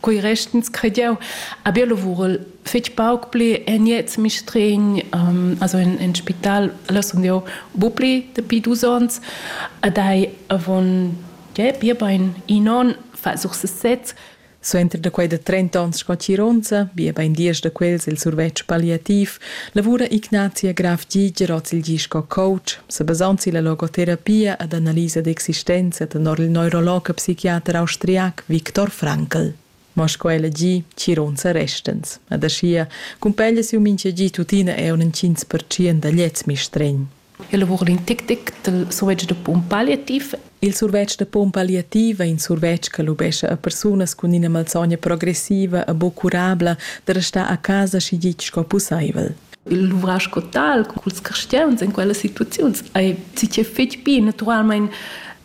quei restens crediau aber lavurel fetg pauc pli en jetzt mistregn um, also in, in spital lassen dir bupli dapi dus ons adai avon ja, bia bein in on fa such se sez Suenter da quei da 30 ons sco Cironza, bia bein dies da quels il survetsch palliativ, Lavura Ignazia Graf Giger oz il gi sco coach, sa basond silla logoterapia ed analisa d'existenza tenor il neurolog e psichiater austriac Viktor Frankl. Ma sco ella gi, chironza restens. Ed aschia cumpeglia siu mintga gi tuttina era in 5% da gliez mistregn. Il lavur in tic tic dal survetsch da pump palliativ. Il survetsch da pump palliativ è in survetsch che lubescha a persunas cun ina malsogna progressiva e buc curabla da restar a casa schi ditg sco pussaivel. L'ouvrage sco tal, culs cristians in quelles situaziuns, ei sicir fetg bi naturalmein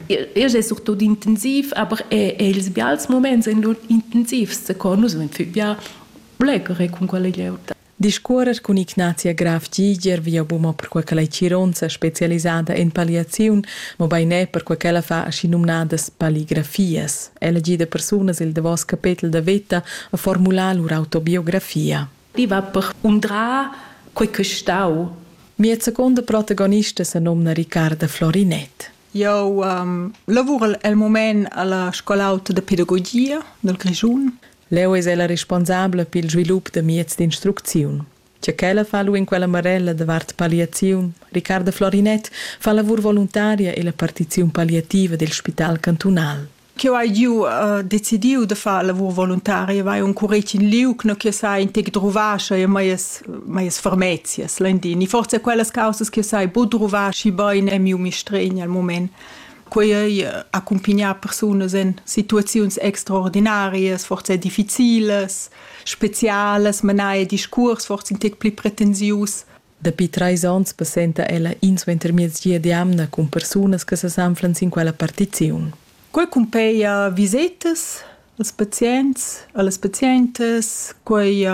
Igl è surtut intensiv, aber è, è ils bials moments en lur intensivs, co nus vegn bia blecere cun quella glieud. Discuorrer cun Ignazia Graf Giger via buma perquai ch'ella ei chironza specialisada en palliaziun, mobein er perquai ch'ella fa aschinumnadas palligrafias. Ella gida persunas el davos capetel da veta a formular lur autobiografia. I va per undrar quei ch'ei stau. Mia seconda protagonista senomna Riccarda Florinett. Jau lavurel el mument a la Scol'auta da pedagogia dal Grischun. Leu es ella responsabla pil svilup da mieds d'instrucziun. Tge ch'ella fa lu en quella marella davart palliaziun, Riccarda Florinett fa lavur voluntaria ella partiziun palliativa dil spital cantunal. Cheu hai giu uh, decidiu da far lavur voluntaria, vai un curec in liug, no che sai in tec druvascha e maies maies fermezias landin. E forse quellas causas che sai bu druvaschi bein è miu mistregn al moment. Quei ei accumpignar persunas en situaziuns extraordinarias, forse difficiles, specialas, menai discuors forse in tec pli pretensius. Dapi treis onns passenta ella insuentermiez gia d'jamna cun persunas che sesanflan sin quella partiziun. Quei cumpeia visetas, Als pazients, a las pazientas, quai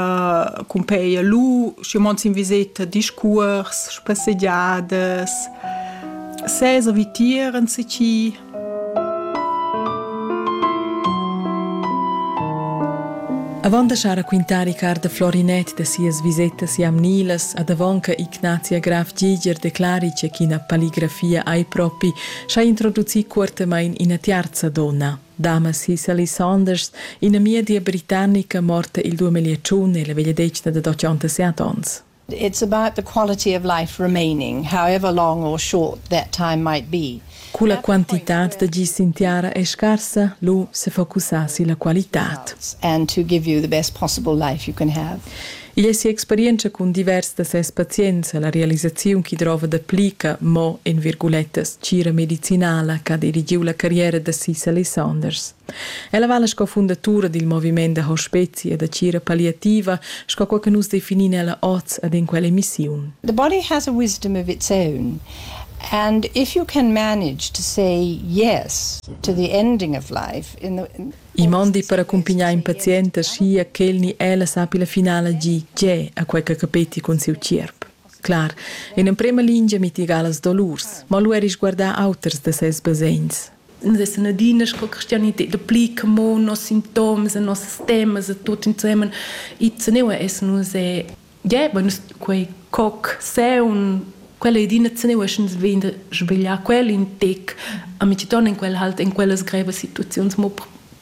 cumpeglia lur, schi mond sin viseta, discuors, spassegiadas, sesa vitier insatgi. Avant da schar raquintar Ricard da Florinett da sias visetas jamnilas ad avonca Ignazia Graf Giger declari che ch'ina palligrafia ei propi, schai introducir cuortamain ina tiarza dona. Damas Sally Saunders, in'amidia britannica morta il 2001 nella vegliadetgna da 87 onns. It's about the quality of life remaining, however long or short that time might be. Cu la quantitad da gis in tiara è scarsa, lu sefocusassi la qualitad. And to give you the best possible life you can have. Igl è si'experientscha cun divers da ses pazients e la realisaziun ch'i drova dapli che mo en virgulettas tgira medicinala ch'ha dirigiu la carriera da Cicely Saunders. Ella vala sco fundatura dil moviment da hospezi e da tgira palliativa, sco quei che nus definin ella oz ed en quell'emissiun. The body has a wisdom of its own, and if you can manage to say yes to the ending of life in the I mondi per accumpignar in pazient aschia ch'el ni ella sappi la finala gi tgè a quei che capetti cun siu tgierp. Clar, in emprema lingia mitiga las dolurs, ma lu eri sguardar auters da ses basegns. Nus essan adina sco cristianitad pli che mo nos sintoms e nossas temas e tut insemen. E teneua essan nus è Yeah, bueno, quei coc, seun, quella è d'ina zenia uschens vegn da svegliar quel in tec, a mi ti torna in quel halt in quellas grevas situaziuns mo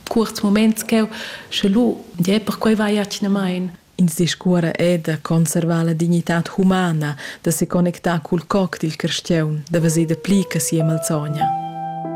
cuorts moments cheu, sche lu, yeah, perquei vai atgnamain. Ins discuora è da conservar la dignitad humana, da se connectar cul coc dil carstiaun, da veser da pli che sia malzogna.